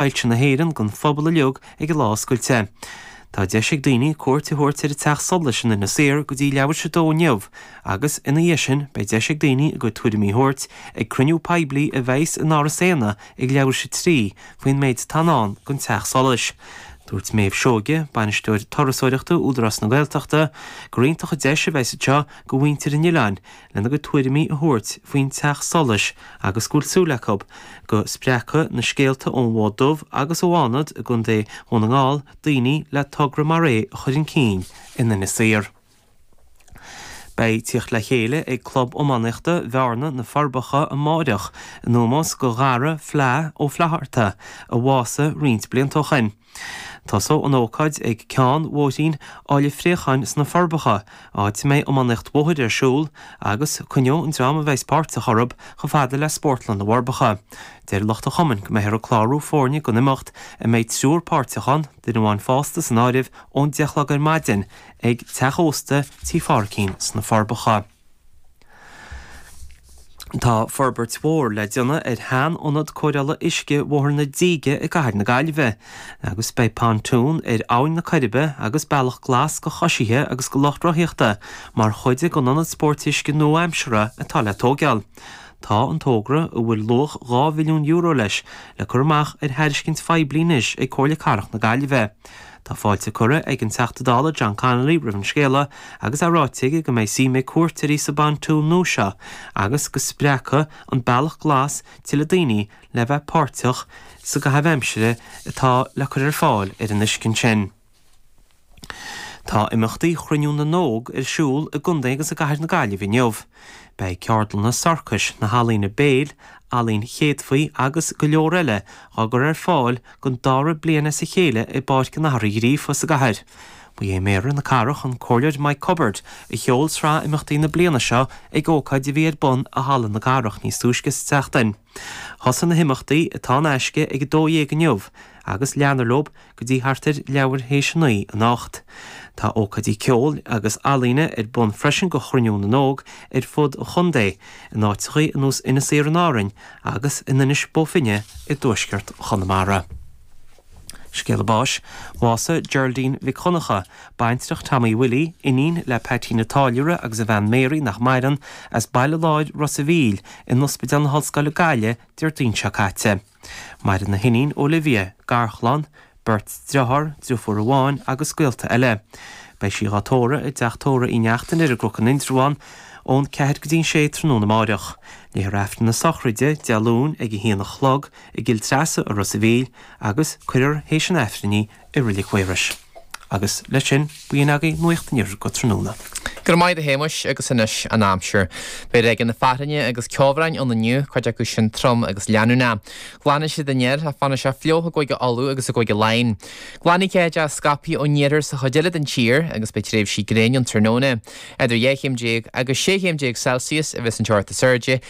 Soilse na hÉireann gon phobal uilig ag an lá oscailte. Tá deis ag daoine cuairt a thabhairt ar an teach solais in Inis Oírr go dtí leathuair théis a 2 inniu agus, ina dhiaidh sin, beidh deis ag daoine a gcuid tuairimí a thabhairt ag cruinniú poiblí a bheas in Áras Éanna ag leathuair théis a 3 faoin méid atá i ndán gon teach solais. Dúirt Meadhbh Seoighe, Bainisteoir Turasóireachta Údarás na Gaeltachta, gur iontach an deis a bheas anseo go mhuintir an Oileáin lena gcuid tuairimí a thabhairt faoin teach solais agus go bhfuil súil acu go spreagfaidh na scéalta ón bhFód Dubh agus ó Fhánad i gContae Dhún na nGall daoine le togra mar é a chur chun cinn in Inis Oírr. Beidh tíocht le chéile ag Club Iománaíochta Bhearna, Na Forbacha amáireach in ómós do Dhara Fla Ó Flaithearta a bhásaigh roinnt blianta ó shin. Tosóidh an ócáid ag ceann bhóithrín Aill an Phréacháin sna Forbacha, áit a mbeidh iománaíocht bhóthair ar siúl, agus coinneoidh an dream a bheidhs páirteach orthu chomh fada le Spórtlann na bhForbacha. Deir lucht an chumainn go mbeifear ag clárú foirne don imeacht, a mbeidh triúr páirteach ann, duine amháin fásta san áireamh, ón deich a chlog ar maidin, ag Teach Ósta Tí Phádraicín sna Forbacha. Tá forbairt mhór le déanamh ar sheanionad cóireála uisce Bhóthar na Díge i gCathair na Gaillimhe agus beidh pontoon ar Abhainn na Coiribe agus bealach glas go coisithe agus go lucht rothaíochta mar chuid den ionad spóirt uisce nua-aimseartha atá le tóigeáil. Tá an tógra, a bhfuil luach €2 mhilliún leis, le cur amach ar thairiscint phoiblí anois ag Comhairle Cathrach na Gaillimhe. Tá fáilte curtha ag an Teachta Dála John Connolly roimh an scéala agus é ráite aige go mbeidh suim ag cuairteoirí sa bpontoon nua seo agus go spreagfaidh an Bealach Glas tuilleadh daoine le bheith páirteach sa gcaitheamh aimsire atá le cur ar fáil ar an uisce ansin. Tá imeachtaí Chruinniú na nÓg ar siúl i gContae agus i gCathair na Gaillimhe inniu. Beidh ceardlanna sorcais, na healaíona béil, ealaín chéadfaí agus go leor eile dhá gcur ar fáil don dara bliain as a chéile i bPáirc an Athar Uí Ghríofa sa gcathair. Ba é Méara na cathrach, an Comhairleoir Mike Cubbard, a sheol sraith imeachtaí na bliana seo ag ócáid a bhí ar bun i Halla na Cathrach níos túisce sa tseachtain. Thosaigh na himeachtaí, atá in aisce, ag 12:00 inniu agus leanfar leo go dtí thart ar leathuair théis a naoi anocht. Tá ócáidí ceoil agus ealaíne ar bun freisin do Chruinniú na nÓg ar fud an chontae. in áiteachaí ar nós Inis Oírr in Árainn agus in Inis Bó Finne i dtuaisceart Chonamara. Scéala Báis, Bhásaigh Geraldine Mhic Dhonncha, baintreach Tommy Willie, iníon le Peaitín a' Táilliúra agus a bhean Mary, nach maireann, as Baile Láir, Ros a' Mhíl, in Ospidéal na hOllscoile Gaillimh Déardaoin seo caite. Maireann a hiníon Olivia, garchlann, beirt driotháir, drifiúr amháin agus gaolta eile. Beidh sí dhá tórradh i dteach tórraimh Uí Neachtain ar an gCnoc in Indreabhán ón ceathair go dtí an sé tráthnóna amáireach. Léifear Aifreann na sochraide, Dé Luain, ag a haon a chlog i gCill Treasa i Ros a Mhíl agus cuirfear théis an Aifrinn í i Reilig Mhaorais. Agus leis sin, b'in agaibh Nuacht an Iarthair go tráthnóna. Go raibh maith agat a Shéamais agus anois an aimsir. Beidh ráigeanna fearthainne agus ceobhráin ann inniu, cuid acu sin trom agus leanúnach. Glanfaidh siad aniar ach fanfaidh sé fliuch i gCúige Uladh agus i gCúige Laighin. Glanfaidh ceathanna scaipthe ón iarthar sa chuid eile den tír agus beidh tréimhsí gréine an tráthnóna. Idir dhá chéim déag agus sé chéim déag Celsius a bheas an teocht is airde